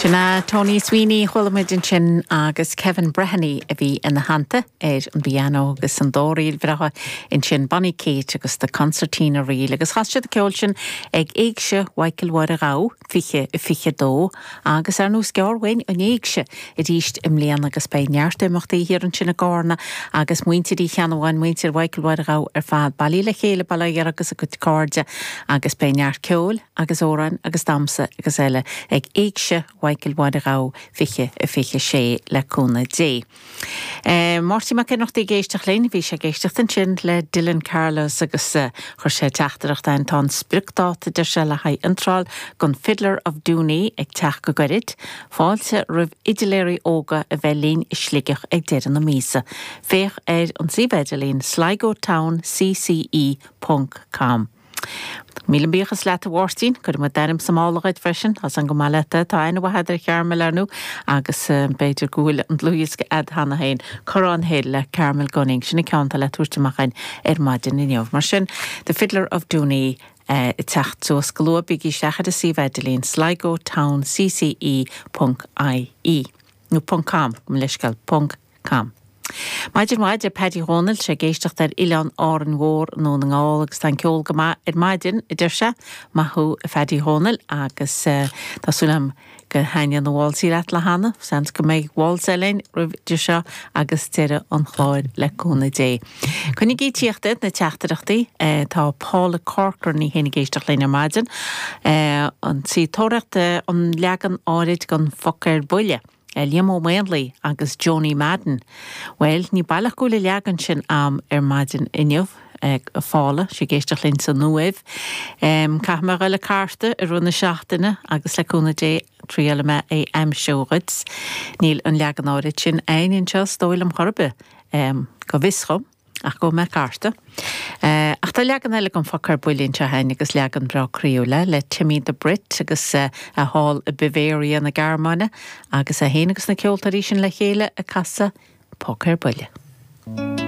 Sin é Tony Sweeney chuala muid ansin agus Kevin Brehony a bhí ina theannta ar an bpianó agus an dá ríl bhreátha ansin Bonny Kate agus The Concertina Reel agus chas siad an ceol sin ag Éigse Mhichael Mháire Ghabha 2022 agus ar ndú is gearr uainn an Éigse arís i mbliana agus beidh neart imeachtaí thiar ansin i gCarna agus muintir Uí Cheannabháin, muintir Mhichael Mháire Ghabha ar fad bailithe le chéile, bail ó Dhia orthu agus a gcuid cairde agus beidh neart ceoil. agus amhráin agus damhsa agus eile ag Éigse Mhichael Mháire Ghabha 2026 le cúnamh Dé. Máirtín Mac Ionnrachtaigh ag éisteacht linn. Bhí sé ag éisteacht ansin le Dylan Carlos agus chuir sé teachtaireacht a'inn, Tá an spriocdáta deir sé le haghaidh iontráil don Fiddler of Dooney ag teacht go gairid. Fáilte roimh fhidiléirí óga a bheith linn i Sligeach ag deireadh na míosa. Féach ar an suíomh idirlín sligotown cce ponc com. Míle buíochas leat a Mháirtín. Cuirfidh muid d'ainm sa mála dhuit freisin, as an go maith leat é. Tá aithne mhaith agat ar Charmel, ar ndú, agus b'fhéidir go bhfuil an dlúthdhiosca a'd cheana féin, Corran Hill le Carmel Gunning, sin an ceann atá le tabhairt amach a'inn ar maidin inniu. Mar sin, The Fiddler of Dooney ag teacht suas go luath, bígí isteach ar a suíomh idirlín, sligotown cce ponc ie, nó ponc com, gabh mo leithscéal, ponc. com. Maidin mhaith, deir Paddy Dhónaill, sé ag éisteacht ar oileán Árainn Mhór i nDún na nGall agus tá an ceol go maith ar maidin, a deir sé. Maith thú, a Phaddy Dhónaill agus tá súil agam gur thaitin an waltz leat le hAnna. Seans go mbeidh Waltz eile a'inn roimh idir seo agus deireadh an chláir le cúnamh Dé. Coinnigí ag tíocht na teachtaireachtaí. Tá Paula Corcoran í féin ag éisteacht linn ar maidin. Tá sí ag tóraíocht an leagan áirid den phoc ar buile. le Liam Ó Maonlaí agus Joanie Madden, Bhuel, ní baileach go bhfuil an leagan sin a'm ar maidin inniu, a Phaula, sí ag éisteacht linn san Uaimh. Caithfidh mé a ghoil ag cartadh i rith na seachtaine agus le cúnamh Dé, triailfidh mé é a aimsiú dhuit. Níl an leagan áirid sin a'inn anseo, is dóigh liom chor ar bith, go bhfios dhom. Ach gabhfaidh mé ag cartadh. Eh, ach tá leagan eile den phoc ar buile anseo a'inn agus leagan breá croíúil, eh, le Timmy the Brit agus, eh, eh, thall i Bavaria na Gearmáine agus é féin agus na ceoltóirí sin le chéile ag casadh Poc ar Buile.